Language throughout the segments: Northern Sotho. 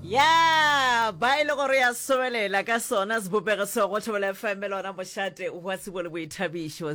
Ya ba e le gore ya sobelela ka sona sebopego seo go Thobela FM e lona mošate wa tsebo le boithabišo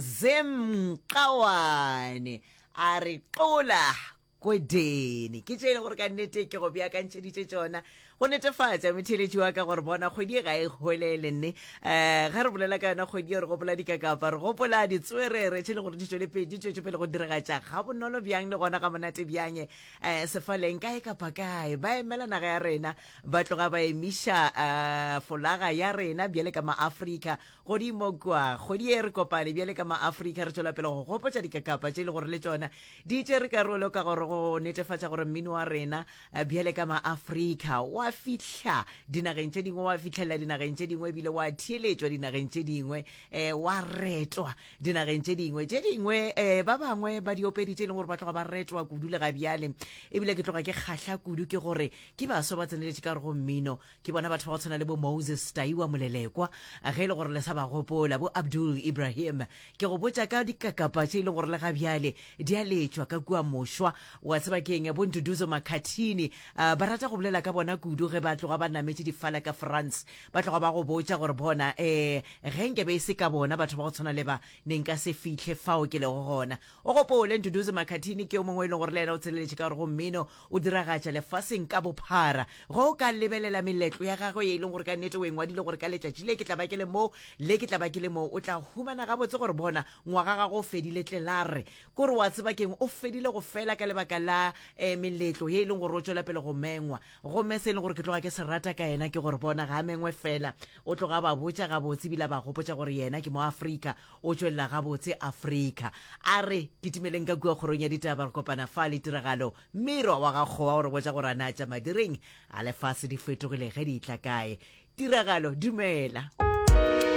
zemkawane a re qola kodene ke tše e le gore ka nnete ke go beakantšheditše tšona go netefatša metheletši wa ka gore bona kgwedi e ga e golele nne um ga re bolela ka yona kgwedi e re gopola dikakapa re gopola ditswerere tše e le gore di tšwelepedi tšwetšopele go diragatša ga bonolo bjang le gona ga monate bjang um sefaleng kae kapa kae ba emela naga ya rena ba tloga ba emiša um folaga ya rena bjale ka maafrika godimo kwa kgwedi e re kopane bjale ka maafrika re tšwela pele go gopotša dikakapa tše e le gore le tšona di tšere karolo ka gore go netefatša gore mmino wa rena eh, bjale ka maafrika wa fihla dinageng tše dingwe wa fitlhelela dinageng tše dingwe ebile wa theeletšwa dinageng tše dingwe um wa retwa dinageng tše dingwe tše dingwe um ba bangwe ba diopedi tše e leng gore ba tloga ba retwa kudu le ga bjale ebile ke tloga ke kgahla kudu ke gore ke baswa ba tseneletše ka re go mmino ke bona batho ba go tshwana le bo moses taiwa molelekwa ge e le gore le sa ba gopola bo abdul ibrahim ke go botša ka dikakapa tše e leng gore le ga bjale di a letšwa ka kua mošwa wa tseba ke eng bo ntuduzo makhathini um ba rata go bolela ka bona kudu ge ba tloga ba nametše difala ka france Ba tloga ba go botša gore, Bona, ee, ge nke be e se ka bona batho ba go tshwana le ba, ne nka se fihle fao ke lego gona. O gopole, Nduduzi Makhathini ke yo mongwe e leng gore le yena o tseleletše ka gore go mmino o diragatša lefaseng ka bophara. Ge o ka lebelela meletlo ya gagwe ye e leng gore ka nnete o e ngwadile gore ka letšatši le ke tla ba ke le moo, le ke tla ba ke le moo, o tla humana gabotse gore, bona, ngwaga gagwe o fedile tlelarre. Ke gore wa tseba ke'ng? O fedile go fela ka lebaka la, ee, meletlo ye e leng gore o tšwela pele go mengwa. gomme se e le gore ke tloga ke se rata ka yena ke gore bona ga mengwe fela o tloga ba botša gabotse ebile ba gopotša gore yena ke mo afrika o tšwelela gabotse afrika a re ke timeleng ka kua kgorong ya ditaba re kopana fa le tiragalo miro wa gakgowa o re botša gore a na tša madireng a lefase di fetogile ge di tla kae tiragalo dumela